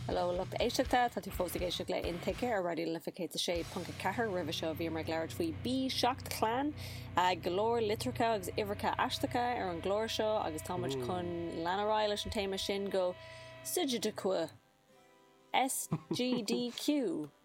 Hello, lucht éisteachta, tá tú fós ag éisteacht le Intuigthe ar Raidió na Life 106.4. Roimhe seo bhíomar ag labhairt faoi B7 Clan, go leor litreacha agus uimhreacha aisteacha ar an gclár seo agus tá muid chun lean ar aghaidh leis an téama sin go Sujidequou, SGDQ!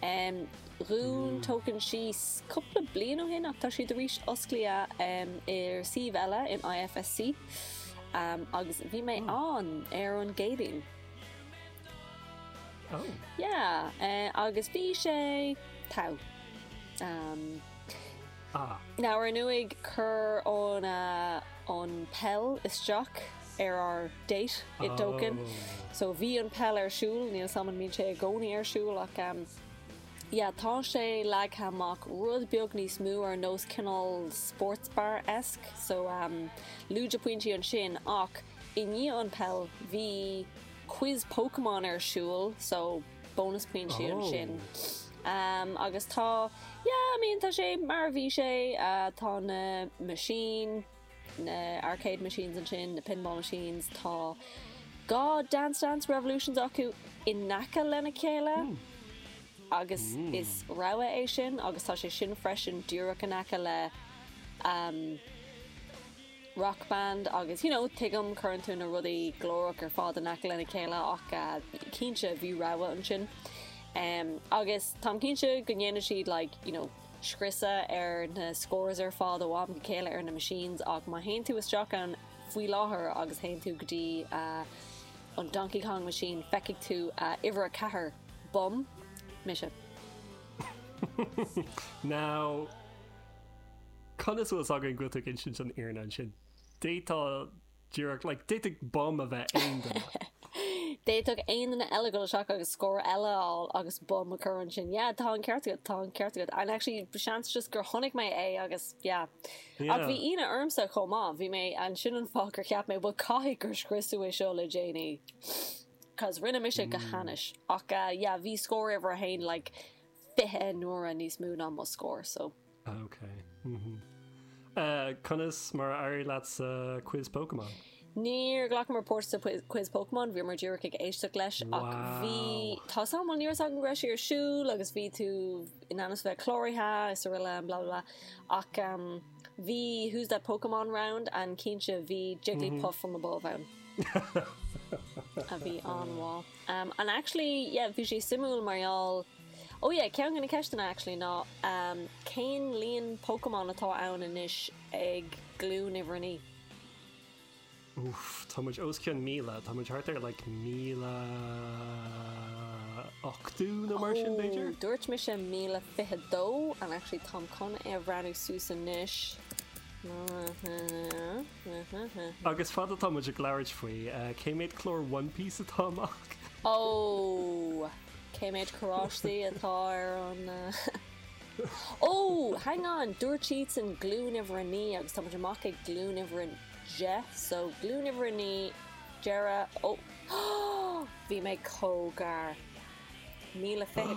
Em dhún Token síos cúpla bliain ó shin ach tá siad tar éis oscailt ar suíomh eile in IFSC em agus bhí mé ann ar an gCéadaoin. Oh. Yeah eh agus bhí sé tough em. Ah. Now ar ndóigh chuir an em an peil isteach ar ár date i dToken so bhí an peil ar siúl níl a fhios agam an mbíonn sé i gcónaí ar siúl ach am yeah tá sé leagtha amach rud beag níos mó ar nós cineál sports bar esque so am lúide pointí ansin ach i ndiaidh an peil bhí quiz Pokémon ar siúl so bonus pointí ansin am agus tá yeah I mean tá sé mar bhí sé uh, tá na machine na arcade machines ansin, na pinball machines, tá dhá Dance Dance Revolutions acu in aice lena chéile agus is rogha é sin agus tá sé sin freisin díreach in aice le umm Rock Band agus you know tuigim cuireann tú na rudaí glórach ar fad in aice lena chéile ach cinnte bhí rogha ansin umm agus táim cinnte go ndéanann siad like you know scriosadh ar na scores ar fad ó am go chéile ar na machines ach má théann tú isteach ann faoi láthair agus théann tú go dtí an Donkey Kong machine feicfidh tú uimhir 4 bum mise. Now conas a bhfuil 's againn go bhfuil tú ag insint an fhírinne ansin? D'fhéadfá díreach, like, d'fhéadfadh bum a bheith aon duine. D'fhéadfadh aon duine eile dhul isteach agus scór eile a fháil agus bum a chur ansin. Yeah, tá an ceart agat, tá an ceart agat. And actually, seans just gur chonaic mé é agus, yeah. Yeah. Ach bhí ionadh ormsa chomh maith. Bhí mé ansin an fáth gur cheap mé, bhuel, caithfidh gur scriosadh é seo le déanaí. Cos rinne mise go hainnis. Ach, yeah, bhí scór uimhir a haon, like, fiche n-uaire níos mó ná mo scór, so. Ah ok mhm. Eh conas mar a éirigh leat sa quiz Pokémon? Níor ghlacamar páirt sa quiz Pokémon, bhíomar díreach ag éisteacht leis ach bhí, tá súil mhol ní raibh a fhios againn go raibh sé ar siúl agus bhí tú in ainm is bheith cláraithe is araile blah blah blah ach ehm bhí who's that Pokémon round and cinnte bhí Jigglypuff from above ann a bhí an-mhaith. Ehm and actually yeah bhí sé suimiúil mar gheall Oh yeah, ceann de na ceisteanna actually ná ehm cén líon Pokémon atá ann anois ag glúin uimhir a naoi? Uff, tá muid os cionn míle, tá muid thart ar like míle ochtó nó mar sin b'fhéidir? Oh, dúirt mise míle fiche dó and actually táim chun é a bhreathnú suas anois. Agus fad atá muid ag labhairt faoi, cé méad clár One Piece atá amach? Oh, Cé méid carráistí atá ar an Ó! Hang on! Dúirt siadsan Glúin Uimhir a Naoi agus táimid amach ag Glúin Uimhir a Deich so Glúin Uimhir a Naoi, deireadh, Ó! Bhí mé comh gar. Míle fiche.